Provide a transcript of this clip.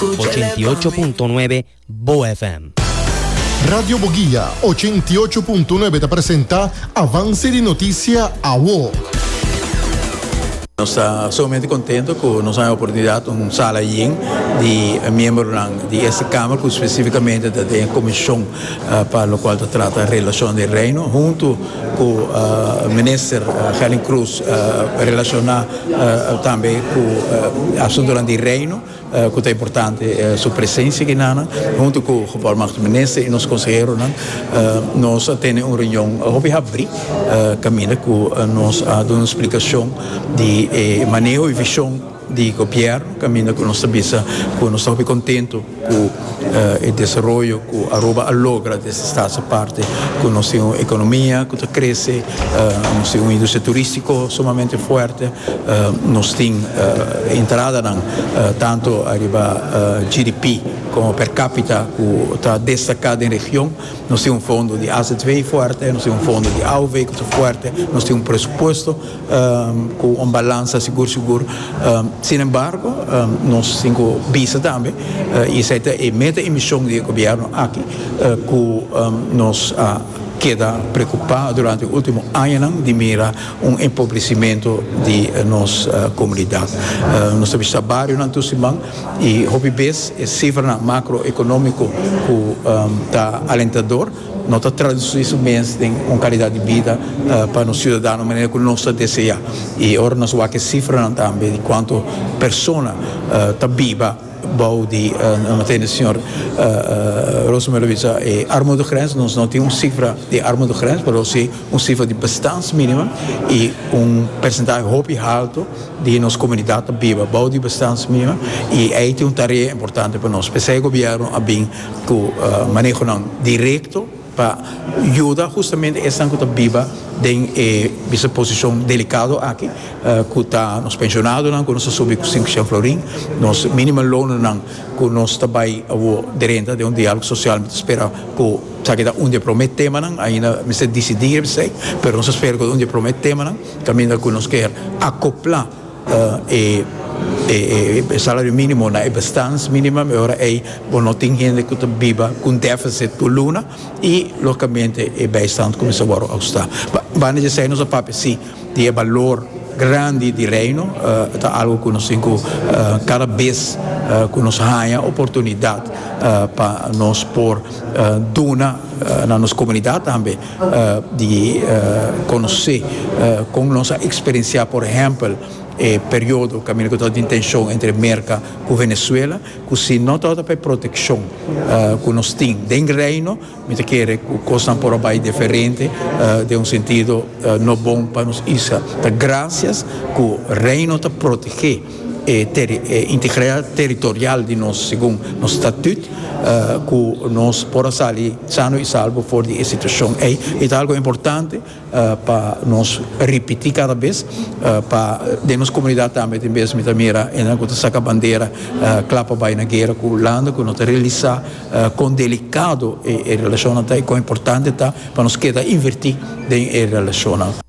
Ocho i ocho punto nuebe Bo FM. Radio Boguia ocho i ocho punto nuebe ta presenta Avance di Noticia Awo. Nos ta sumamente contento cu nos a haya oportunidad un sala yin di miembronan di esta Kamer cu specificamente ta den e comision pa locual ta trata Relacion di Reino hunto cu Minister Helen Cruz relaciona tambe cu asuntonan di Reino. Cu ta importante e su presencia aki na nan. Hunto cu Gebarmachtigde Minister y nos conseheronan nos a tene un reunion hopi habri caminda cu nos a duna un splicacion di e maneho y vision di Gobierno caminda cu nos ta bisa cu nos ta hopi contento cu e desaroyo ku Aruba a logra des di stat su parti ku nos tin un ekonomia ku ta krese, nos tin un industria turistiko sumamente fuerte, nos tin e entradanan tantu ariba GDP komo per kapita ku ta destaká den region, nos tin un fondo di AZW fuerte, nos tin un fondo di AOW ku ta fuerte, nos tin un presupuesto cu un balansa sigur sigur. Sin embargo, nos tin cu bisa tambe, y esey ta e meta y mision di e Gobierno aki, cu nos a keda preocupa durante e ultimo añanan di mira un empobrecimento di nos comunidad. Nos ta bishita barionan tur siman y hopi bes e cifranan macroeconomico cu ta alentador. No ta traduci su mes den un calidad di bida pa nos ciudadano manera cu nos ta desea. Y ora nos wak e cifranan tambe di cuanto persona ta biba bou di, nos lo tene señor Rosemary lo bisa e armudegrens, nos no tin un cifra di armudegrens pero si un cifra di bestans minimum y un percentahe hopi halto di nos comunidad ta biba bou di bestans minimum y ey tin un tarea importante pa nos. P'esey gobierno a bin. cu manehonan directo pa yuda justamente esnan cu ta biba den e bisa posicion delicado aki, cu ta nos pensionadonan cu nos ta subi cu sinku shen florin, nos minimum loannan cu nos ta bay awo di renta den un dialogo social mi ta spera cu esaki ta un di e prome temanan ainda mester dicidi resei pero nos ta spera cu ta un di e prome temanan caminda cu nos kier acopla. E salario minimo na e bestans minimum e ora ey bo no tin hende cu ta biba con deficit tur luna y logicamente e bijstand cuminsa a worde austa. Banda esey nos a papia si di e balor grandi di Reino ta algo cu nos tin cu cada bes cu nos haya oportunidad pa nos por duna na nos comunidad tambe. di conoce con nos a experiencia por ehempel e periodo caminda cu ta tin tension entre Merca cu Venezuela cu si no ta ota pa e proteccion cu nos tin den Reino mi ta kere cu cosnan por a bay diferente den un sentido no bon pa nos isla ta gracias cu Reino ta protege. e integridad territorial di nos segun nos statut cu nos por a sali sano y salbo for di e situacion ey. Y ta algo importante pa nos ripiti cada bes pa den nos comunidad tambe tin bes mi ta mira esnan cu ta saca bandera cla pa bay na guera cu landa cu no ta realisa con delicado e relacionnan ta y con importante ta pa nos keda inverti den e relacionnan.